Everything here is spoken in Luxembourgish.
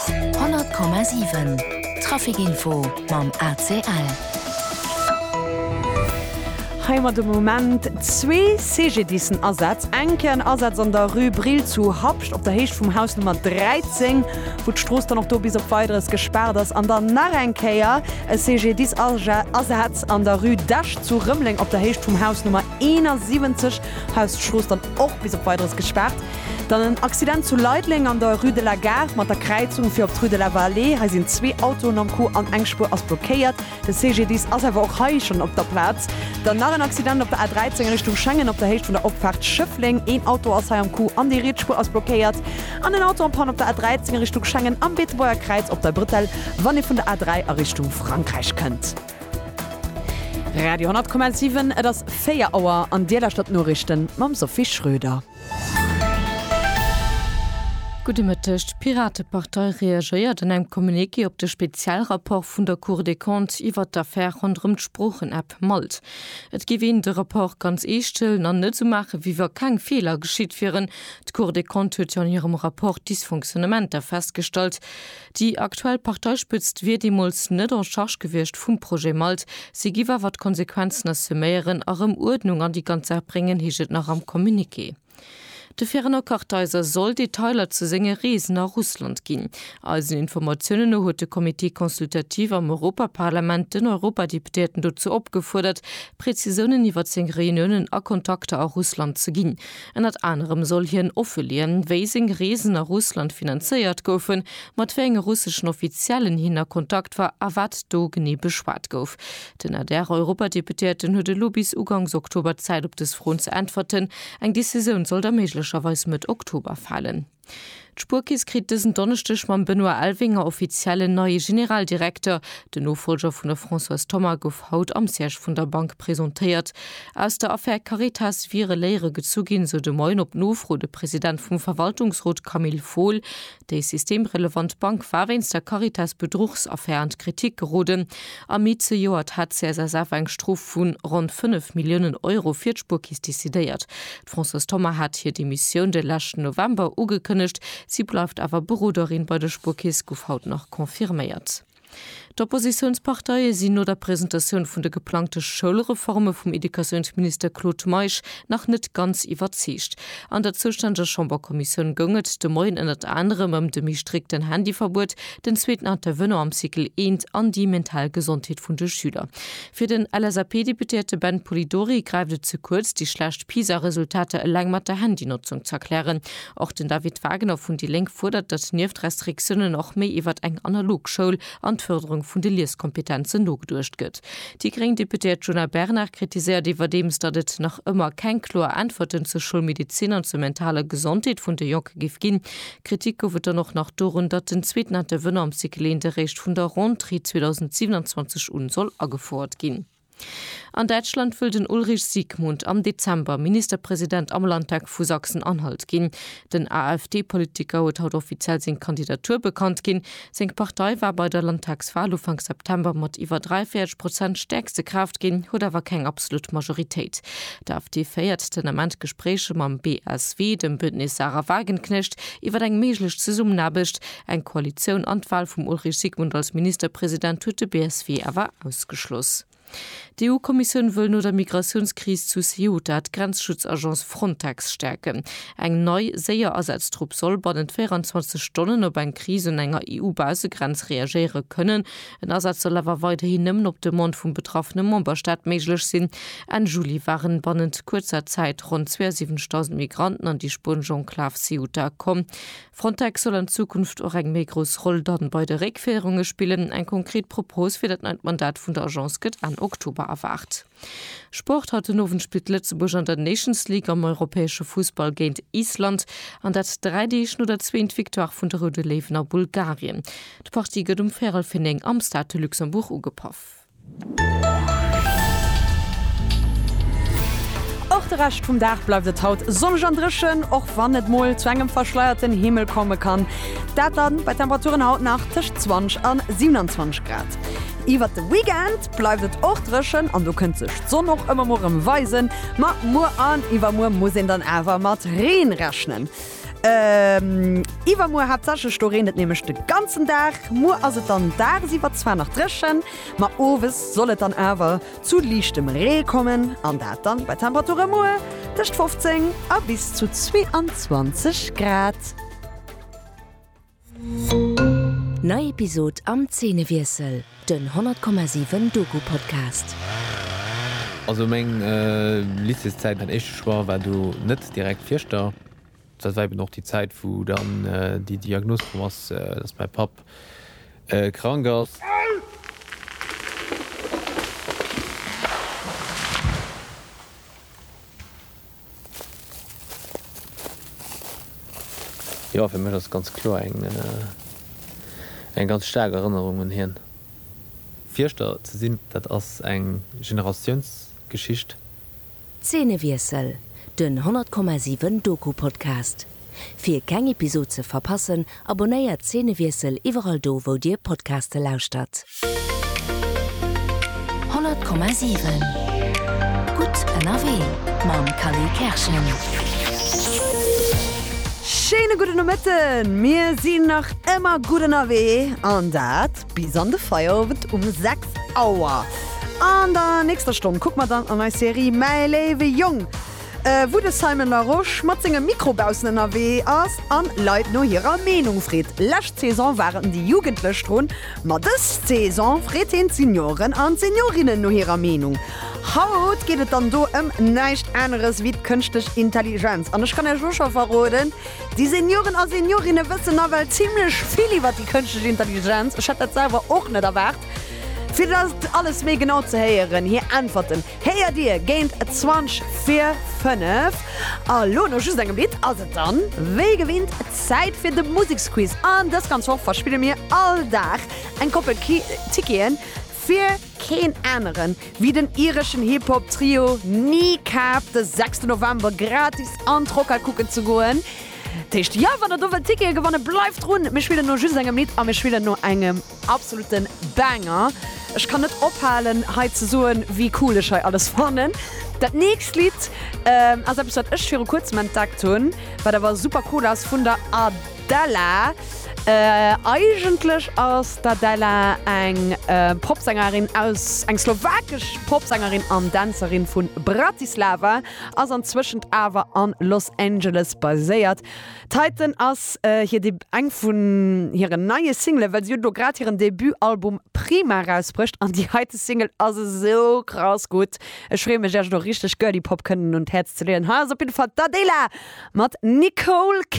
100,7 Trafic info mam ACL. Hei hu mer de Moment zwee CGDISen Asätz. Eng Kéier en Asaz an der Rue Brill zu Habscht op der Héicht vum Haus Nummer 13, wou d'Strooss dann och do bis op Weideres gespaart ass. An dann nach eng Kéier e CGDIS Asaz an der Rue d'Esch zu Rëmeleng op der Héicht vum Haus Nummer. 71 Haus d'Strooss dann och bis op Weideres gespaart. Dann en Accident zu Leideleng an der Rue de la Gare mat der Kräizung fir op d'Rue de la Vallée. Hei sinn zwee Autoen am Coup an eng Spuer ass blockéiert. De CGDIS ass awer och hei schonn op der Plaz. Dann nach en Accident op der A13 Richtung Schengen op der Héicht vun der Opfaart Schëffleng. Een Auto ass hei am Coup an déi riets Spuer ass blockéiert. An en Auto en panne op der A13 Richtung Schengen am Beetebuerger Kräiz op der Bretelle, wann ee vun der A3 a Richtung Frankräich kënnt. Radio 10,7 Et ass 4 Auer an Dir lauschtert d'Noriichten mam Sophie Schröder. Gudde Mëtteg, D'Piratepartei reagéiert an engem Communiqué op de Spezialrapport vun der Cour des Comptes iwwert d'Affär ronderëm d'Sproochen-App Malt. Et géif een de Rapport ganz eescht hëllen an net esou maachen, wéi wa keng Feeler geschitt wieren. D'Cour des Comptes huet jo an hirem Rapport Dysfonctionnementer festgestallt. Déi aktuell Parteispëtzt wier deemools net en charge gewiescht vum Projet Malt. Si giff awer d'Konsequenzen assuméieren a rëm Uerdnung an déi ganz Saach bréngen, heescht et nach am Communiqué. De Fernand Kartheiser soll Detailer zu senge Reesen a Russland ginn. Eisen Informatiounen no huet de Comité consultatif am Europaparlament den Europadeputéierten dozou opgefuerdert, Prezisounen iwwer seng Reuniounen a Kontakter a Russland ze ginn. Ënnert anerem soll hien offeleeën, wéi seng Reesen a Russland finanzéiert goufen, mat wéi enge russeschen Offiziellen hien a Kontakt war a wat do genee beschwat gouf. Den Adr-Europadeputéierten huet elo bis ugangs Oktober Zäit op dës Froen ze äntwerten. Eng Decisioun soll da méiglecherweis Mëtt Oktober falen. D'Spuerkeess kritt dësen Donneschdeg mam Benoît Elvinger offiziell en neie Generaldirekter. Den Nofollger vun der Françoise Thoma gouf haut am Siège vun der Bank presentéiert. Aus der Affär Caritas wiere Léiere gezu ginn, sou de Moien op Nofro de President vum Verwaltungsrot Camille Fohl. Déi systemrelevant Bank war wéinst der Caritas-Bedruchsaffär an d'Kritik geroden. Am Mee zejoert hat d'CSSF eng Strof vu ronn 5 Milliounen Euro fir d'Spuerkeess decidéiert. D'Françoise Thoma hat hir Demissioun de leschten November ugekënnegt. Si bleift awer Beroderin bei der Spuerkeess, gouf haut nach confirméiert. D'Oppositiounsparteie sinn no der Presentatioun vun de geplangte Schoulreforme vum Educatiounsminister Claude Meisch nach net ganz iwwerzeegt. An der zoustänneger Chamberkommissioun goung et de Moien ënnert anerem ëm de méi strikten Handyverbuet, den zweeten Intervenant am Cycle eent an déi mental Gesondheet vun de Schüler. Fir den LSAP-Deputéierte Ben Polidori gräift et ze kuerz, déi schlecht PISA-Resultater eleng mat der Handynotzung ze erklären. Och den David Wagner vun déi Lénk fuerdert, datt nieft Restriktiounen och méi iwwert eng analog Schoul an d'Fërderung vun de Lieskompetenzen nogeduecht gëtt. Déi gréng Deputéiert Djuna Bernard kritiséiert iwwerdeems, datt et nach ëmmer keng kloer Äntwerten zur Schoulmedezin an zur mentaler Gesondheet vun de Jonke géif ginn. Kritik gouf et dann och nach dorun, datt den zweeten Intervenant am Cycle 1 eréischt vun der Rentrée 2027 un soll agefouert ginn. An Däitschland wëll den Ulrich Siegmund am Dezember Ministerpresident am Landtag vu Sachsen-Anhalt ginn. Den AfD-Politiker huet haut offiziell seng Kandidatur bekannt ginn. Seng Partei war bei der Landtagswal Ufank September mat iwwer 43 Prozent stäerkste Kraaft ginn, huet awer keng absolut Majoritéit. D'AfD féiert den Ament Gespréicher mam BSW, dem Bündnis Sarah Wagenknecht, iwwer eng méiglech Zesummenaarbecht. Eng Koalitioun an d'Wal vum Ulrich Sigmund als Ministerpresident huet de BSW awer ausgeschloss. D'EU-Kommissioun wëll no der Migratiounskris zu Ceuta d'Grenzschutzagence Frontex stäerken. Eng nei, séier Asatztrupp soll bannent 24 Stonnen op eng Kris un enger EU-Baussegrenz reagéiere kënnen. En Asaz soll awer weiderhin nëmmen op Demande vum betraffene Memberstaat méiglech sinn. Enn Juli waren bannent kuerzer Zäit ronn 72.000 Migranten an déi spuenesch Enklav Ceuta komm. Frontex soll an Zukunft och eng méi grouss Roll dann bei de Réckféierunge spillen. Eng konkret Propos fir dat neit Mandat vun der Agence gëtt Enn Oktober erwaart. Sport, Haut den Owend spillt Lëtzebuerg an der Nations League am europäesche Fussball géint Island, an dat dräi Deeg no der zweent Victoire vun de Roude Léiwen a Bulgarien. D'Partie gëtt um véirel fir néng am Stade de Luxembourg ugepaff. Och de Rescht vum Dag bleift et haut sonneg an dréchen, och wann et mol zu engem verschleierten Himmel komme kann. Dat dann bei Temperaturen haut nach tëscht 20 an 27 Grad. Iwwert de Weekend bleift et och dréchen an do kënnt sech d'Sonn och ëmmer mol rëm weisen, ma muer an iwwermuer muss een dann awer mat Reen rechnen. Iwwermuer haaptsächlech, do reent et nämlech de ganzen Dag. Muer ass et dann dagsiwwer zwar nach dréchen, ma owes soll et dann awer zu liichtem Ree kommen an dat dann bei Temperature muer tëscht 15 a bis zu 22 Grad. Nei Episod am Zeenewiessel, den 100,7 Doku-Podcast. Also meng Lycéeszäit, mäin éischte Choix war do net direkt Fierschter. Dat war eben och déi Zäit, wou dann déi Diagnos komm ass, dass mäi Papp krank ass. Jo, fir mech ass et ganz kloer eng eng ganz staark Erënnerung un hien. Fierschter ze sinn, dat ass eng Generatiounsgeschicht. Zeenewiessel, den 100,7 Doku-Podcast. Fir keng Episod ze verpassen, abonnéiert Szenewiessel iwwerall do wou dir Podcaste lauschtert. 100,7 Gutt ënnerwee mam Cally Kerschen. Schéine gudden Nomëtten! Mir sinn nach ëmmer gutt ënnerwee an dat bis an de Feierowend um 6 Auer. An der nächster Stonn kucke mer dann an eis Serie Mäi léiwe Jong. wou de Simon Larosche mat sengem Mikro baussen ënnerwee ass an Leit no hirer Meenung freet. Lescht Saison waren déi Jugendlech drun, ma dës Saison freet heen d'Senioren an d'Seniorinnen no hirer Meenung. Haut geet et dann do ëm näischt aneres wéi d'Kënschtlech Intelligenz. An ech kann Iech elo scho verroden, déi Senioren a Seniorinnen wëssen nawell zimlech vill iwwert déi Kënschtlech Intelligenz. Ech hätt dat selwer och net erwaart. Fir dat alles méi genau ze héieren, hir Äntwerten, Kéier dir géint 20 vir 5 a lo no just engem Lidd ass et dann wéi gewinnt Zäit fir de Museksquiz an dës ganz Woch verspille mir all Dag eng Koppel Ticketen fir keen aneren wéi den ireschen Hip-Hop Trio Kneecap de 6 November gratis an d'Rockhal kucken ze goen. D'heescht jo wann der do wëllt Tickete gewannen bleift drun, mir spillen no just engem Lidd a mir spillen no engem. Absoluten Banger! Ech kann net ophalen hei ze soen wéi cool ech hei alles fannen. Dat nächst Lidd ass eppes wat ech viru kuerzem entdeckt hunn, wat awer super cool ass, vun der Adela. Eigentlech ass d'Adela eng Popsängerin aus, eng slowakesch Popsängerin an Dänzerin vu Bratislava, ass anzwëschent awer a Los Angeles baséiert. D'heiten ass hir Debut, eng vun hiren neie Singlen, well si huet elo grad hiren Debutalbum Prima erausbruecht an déi heite Single ass esou krass gutt. Ech freeë mech, Iech elo richteg Girly-Pop kënnen un d'Häerz ze leeën. Hei ass op jidde Fall d'Adela mat Nicole.